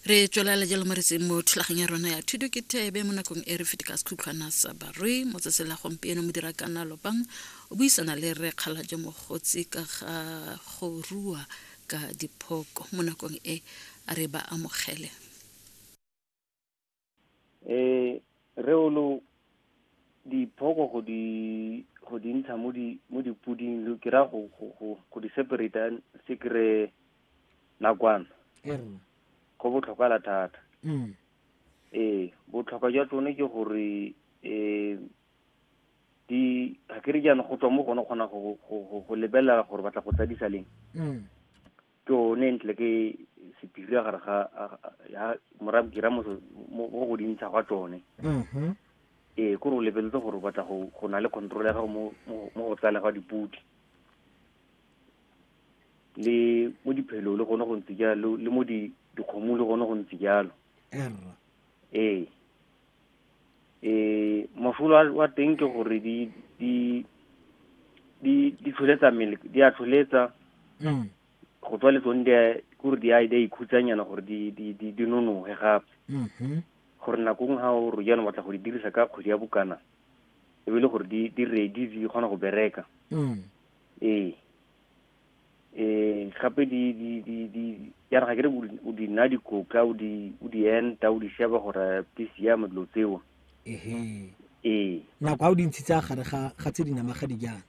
re tswelela jalo mo retseng mo thulagang ya rona ya thuto ke thebe mo nakong e re fete ka sekhutlhwana sa barui mo tsatsi la gompieno mo dira kana lopang o buisana le re kgala jo mogotsi ka ga go rua ka diphoko mo nakong e a re ba amogele eh re o lo diphoko go di go di ntsha mo di mo dipoding lo ke ra go go go go di separate se kre nakwana go botlhokwa la thata mm. ee botlhokwa jwa tsone ke gore um di ga ke re jaana go tswa mo gone kgona go lebelela gore batla go tsadisa leng mm. ke one ntle ke sepiri ya gare ga ya morab ke mo go dintsha gwa tsone mm-hmm. ee ko re o lebeletse gore o batla go na le control ya gago mo go tsala ga diputi le mo diphelo le gone go ntse jalo le mo dikgomo le gone go ntse jalo ee eh mosola wa- wa teng ke gore di di di di tlholetsa mmele di a tlholetsa Mm. go tswa le tsone di a- ke gore di a di a ikhutsanyana gore di di di di nonoge gape Mhm. gore nako ngwe ga o re jaanong batla go di dirisa ka kgwedi ya bokana e be e le gore di di ready di kgona go bereka Mm. ee eh gape di di di di ya re ga kere o di nna dikoka o di o di enta o di sheba gore di siame dilo tseo ehe ee nako ga o di ntshitsa gare ga ga tse di namaga di jang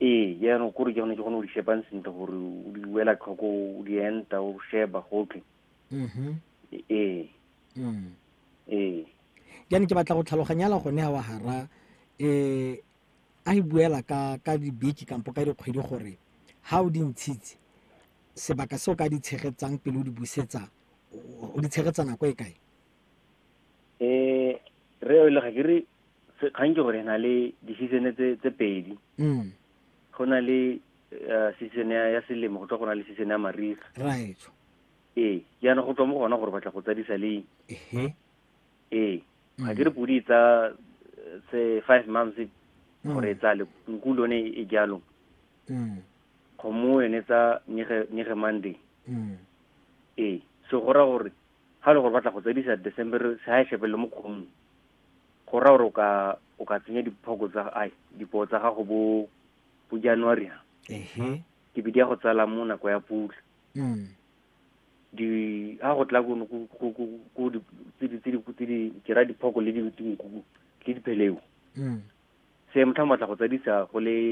ee jaanong kore ke gone ke gone o di shebang sentle gore o di wela tlhoko o di enta o sheba gotlhe mhm. ee mm. ee jaanong ke batla go tlhaloganyala gone ga wa gara um a e buela ka ka dibeke kampo ka dikgwedi gore ha o di ntshitse sebaka se o ka di tshegetsang pele o di busetsa o di tshegetsa nako e kae um re o le ga ke re kgang ke gore na le di-seasone tse pedi mm. go na le eh, season ya selemo go tswa go na le season ya mariga right ee jaana go tswa mo gona gore batla go tsadisa leng ee ga ke re podi e tsa eh, se five months gore e tsa le nku lone e jalo Mm, kgomo yone e tsa nyege nyege monday mm, ee so go ra gore ga le gore batla go tsadisa december se ga e shepelele mo kgomong go ra gore o ka o ka tsenya diphoko tsa ai dipoo tsa gago bo bo january ha ehe ke bidi ya go tsala mo nako ya pula mm, di ha go tla ko ko ko ko ko di tse di tse di tse di ke ra diphoko le di dinku le dipheleu se motlha motla go tsadisa go le